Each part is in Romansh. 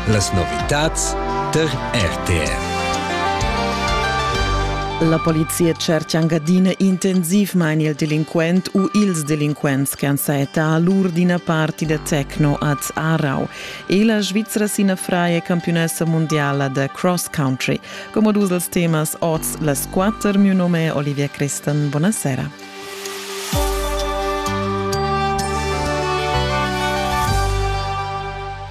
Las novitads tar RTR. La polizia tschercha anc adina intensivmain il delinquent u ils delinquents che han sajettà lur d'ina parti da techno ad Aarau e la Svizra sina fraia campiunessa mondiala da cross country. Come dus dels temas oz las quatter, mio nome è Olivia Crestan. Buonasera.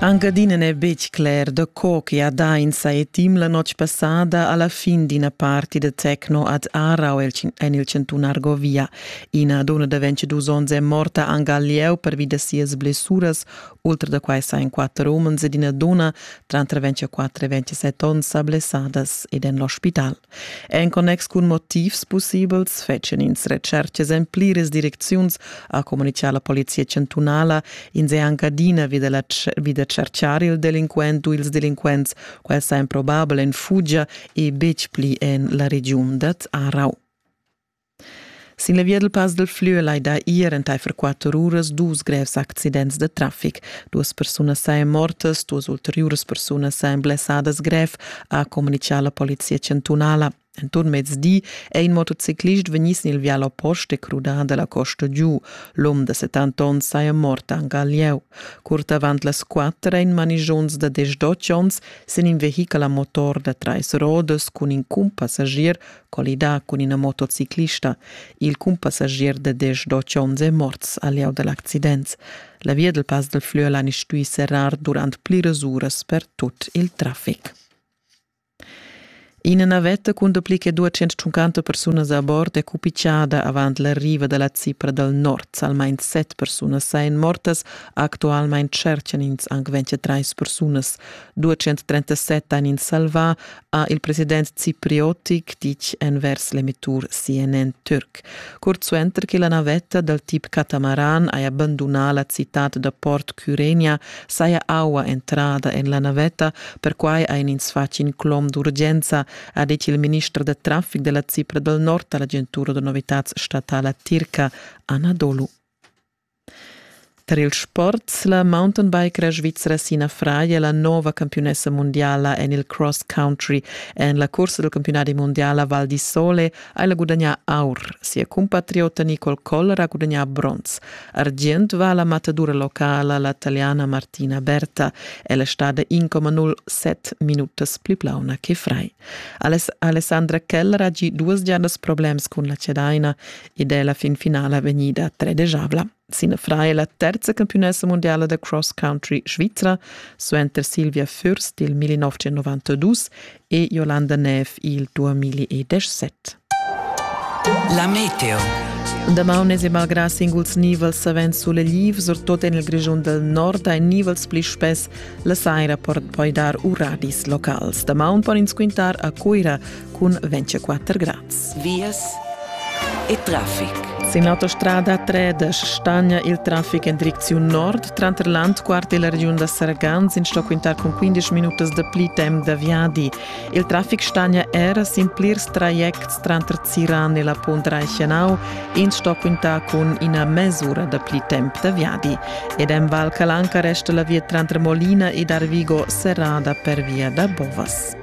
Anc adina n'è betg cler da co che Adainsa è team la notg passada alla fin d'ina parti da techno ad Aarau en il chantun Argovia. Ina donna da 22 onns è morta anc al lieu pervi da sias blessuras. Oltre da quai sa en quatter umens ed ina donna, tranter 24 e 27 onns, sa blessadas ed en l'ospital. En connex cun motivs pussibels fetschen ins retschertgas en pliras direcziuns, ha communitgà la polizia chantunala in se anche adina vi, della, vi da cerchiar il delinquent u ils delinquents. Quel sa improbabel en fugia e betg pli en la regiun dat Arau. Sin la via dal Pass dal Flüel hai dà ier entaifer quatter uras dus grevs accidents da traffic. Duas persunas sain mortas, duas ulteriuras persunas sain blessadas grev, ha communitgà la polizia chantunala. Enturn mezdi è in motociclist vegnì sin il vial oppost e crudà da la costa giu. L'um da 70 onns saja mort anche al lieu. Curt avant las quatter è in manigions da 18 onns sin in vehichel a motor da trais rodas cun in cumpassagier collidà cun ina motociclista. Il cumpassagier da desch dotg onns è morts a lieu da l'accident. La via del Pass del Flüerlein è stuì serrar durant pliras uras per tut il traffic. Ina navetta cun dapli che 250 persunas a bord è cupichada avant l'arriva da la Cipra dal nord. Almain set persunas sain mortas. Actualmain tscherchan ins anc 23 persunas. 237 han ins salvà, ha il president cipriotic ditg envers l'emettur CNN Türk. Curt suenter che la navetta dal tip catamaran haja bandunà la citad da Port Cyrenia, saja aua entrada en la navetta, perquai ein ins fatg in clom d'urgenza, ha detg il minister da traffic della Cipra del Nord all'agentura de novitads statala tirca Anadolu. Tar ils sports la mountainbike svizra Sina Frei è la nova campiunessa mundiala en il cross country. En la cursa del campiunati mondiala Val di Sole ha ella gudagnà aur. Sia cumpatriota Nicole Koller ha gudagnà bronz. Argient va alla matadura locala la taliana Martina Berta. Ella è stata 1,07 minutas più plauna che Frei. Alessandra Keller ha già duas giornas problems con la cedaina. ed è la fin finala vegnida tredegevla sin fra è la terza campionessa mondiala da cross country svizra suenter Silvia Fürst il 1992 e Jolanda Neff il 2017. La meteo. Damaun es malgrà singuls nivels savens sulegliv, surtot en il Grischun del Nord, ein nivels pli spess, la saira poi dar uradis locals. Damaun pon ins quintar a Cuira, cun 24 grads. Vias e traffic. Sin l'autostrada 3 stagna il traffic en direcziun nord tranter Landquart e la regiun da Sargans in sto quintar cun 15 minutas da pli temp da viadi. Il traffic stagna era sin plirs trajects tranter Ziran e la Punt Reichenau, in sto quintar cun ina mesura da pli temp da viadi. Ed en Val Calanca resta la via tranter Molina ed Arvigo serrada per via da Bovas.